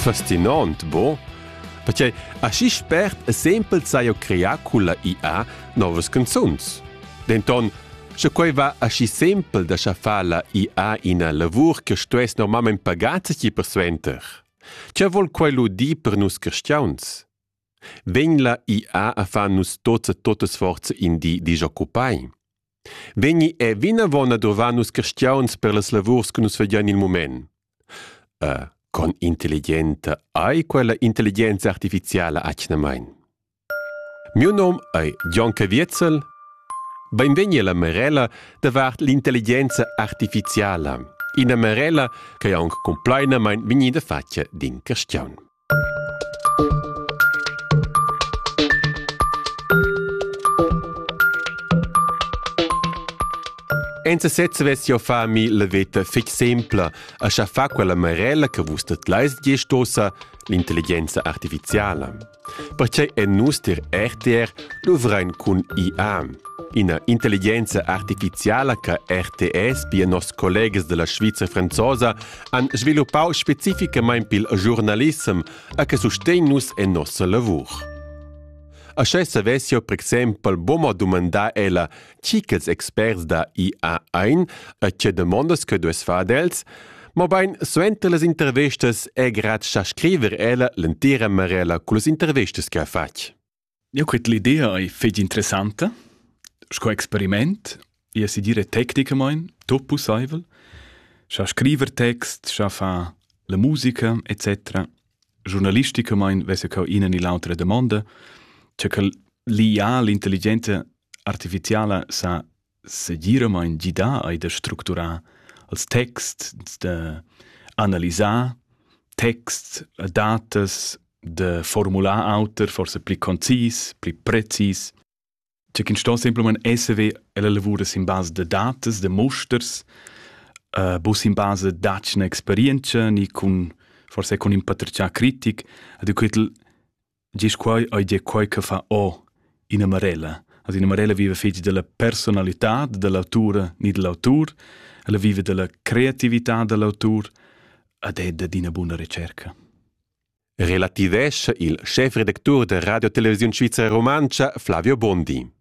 Fascinant, bo? Perchei aschi spert e sempel sai eu crear culla IA novas canzuns. Denton, sche quei va aschi sempel da schaffar la IA ina lavur che stuess normalmein pagar ti persuenter. Che vol quei lu dir per nus cristiauns? Vegn la IA a far nus tots e totas forza in di disoccupai? Vegni è vinavon a dovar nus questions per las lavurs che nus vedian il moment. Uh, con intelligenta ei quella intelligenza artificiala atgnamain? Mio nom è Gian Caviezel. Benvegni alla Marella davart l'intelligenza artificiala. Ina Marella che è anche complainamain vegnida fatta din question. Enza sezza vess jau fa mi la veta fitg simpla, a scha fa quella marella che vus dat lais giestosa l'intelligenza artificiala. Pertgei è nus dir RTR luvrain cun IA, ina intelligenza artificiala che RTS, pia nos collegas della Sviza franzosa, han sviluppau specificamein pil giurnalissem e che sustegn nus en nossa lavur. Aschè savessio per exempel boma dumandar ella chi ch'els experts da IA ein e tge demandas che dues far els, mobein suenter las intervistas è grad cha scriver ella l'entira marella cullas intervistas che ha fatg. Eu cret l'idea ei fetg interessanta sco experiment, ia si dire tecnicamaing, tot pussaivel, scha scriver text, scha far la musica etc. Giurnalisticamaing vess cau ina ni l'autra damonda, cha quel liià l'intelligenza artificiala sa segiramaing gidà eir da structurar els texts, da analisar texts, datas, da formular auter, forsa pli concis, pli precis. Cioè chi'ns sto simplamaing esser ve e la lavur es in basa da datas, da musters, uh, bus in basa da'tschna experientscha ni cun forsa cun ün patratgià critic. Ed eu quetel Gis quai ei dir quai che fa o ina marella. Also ina marella vive fetg della personalità dell'autura ni dell'autur, ella vive della creatività dell'autur ed è da d'ina buna ricerca. Relativescha il schefredactur da Radio Televisiun Svizra Romantscha Flavio Bondi.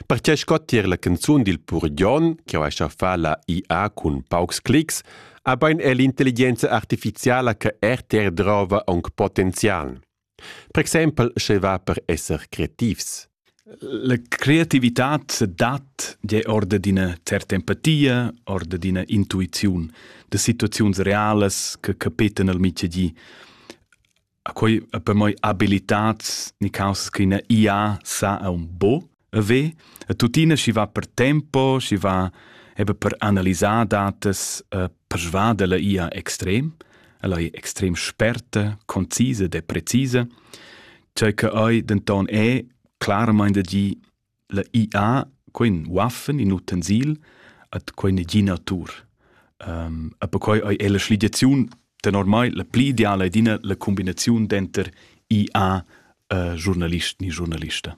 Perché scottier la canzun dil Purgion, che ha fa la IA cun paucs clics, ha bein è l'intelligenza artificiala che RTR drova aunc potenzial. Per exempel sche va per esser creativs. La creativitad dat je orde d'ina certa empatia, orde d'ina intuiziun, da situaziuns realas che capeten al mitgedi. A quei a per moi abilitats ni causas che ina IA sa a un bo, E ve, e tuttina schi va per tempo, schi va eben per analisar datas e persuader la ia extrem, ella è extrem sperta, concise de precise, ciò che ei denton è claramente di la IA quin waffen in utensil at quine gi natur. Um, e perquai è la schligiaziun ten ormai la pli ideale è dina la combinazione denter IA e eh, giornalist ni giornalista.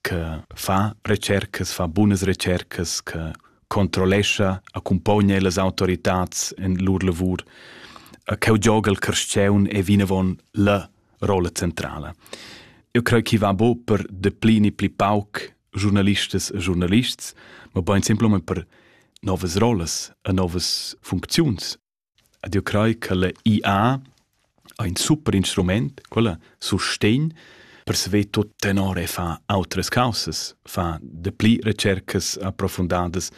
che fa retschercas, fa bunas retschercas, che controllescha, accumpogna las autoritads in lur lavur, cheu gioga il carstgaun è vinavon la rolla centrala. Eu creo che va bo per deplini pli pauc giornalistas e giornalists, ma bain simplesmente per novas rollas e novas funcziuns. Ed jeu crei ch'ella IA ha in super instrument, quella sustegn per saver tut tenor e fa autras caussas, fa dapli retschercas approfundadas,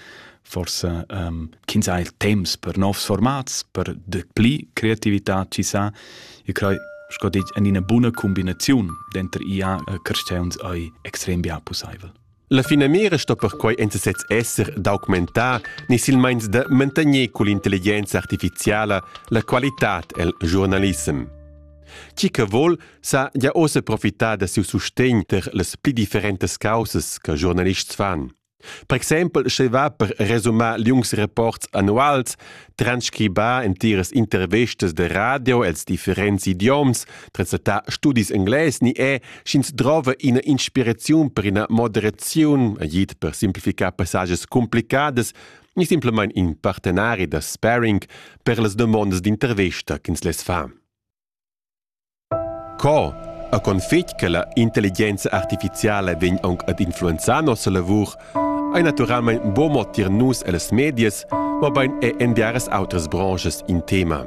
forsa um, ch'ins ha il temps per novs formats, per dapli creativitad chi sa. Io crei, sco detg, en ina buna cumbinaziun denter IA e carstgauns ei extrem bia pusseivel. La finamira sto perquei enta sez esser d'augmentar ni silmeins da mantegner cull'intelligenza artificiala la qualitad el giurnalissem. Chi che vol sa ja ossa profitar da siu sustegn ter las pli differentas causas che giornalists fan. Per exempel, sche va per resumar liungs rapports annuals, transcribà entiras intervistas de radio els differents idioms, translatà studis englais ni è, sch'ins drova ina inspiraziun per ina moderaziun, agit per simplificar passages complicadas, ni simplamain in partenari da sparring per las domondas d'intervista ch'ins les fa. Co e con fetg che la intelligenza artificiala vegn aunc ad influenzar nossa lavur, ei naturalmein buca mo tier nus ellas medias, mobein er en biaras outras branschas in tema.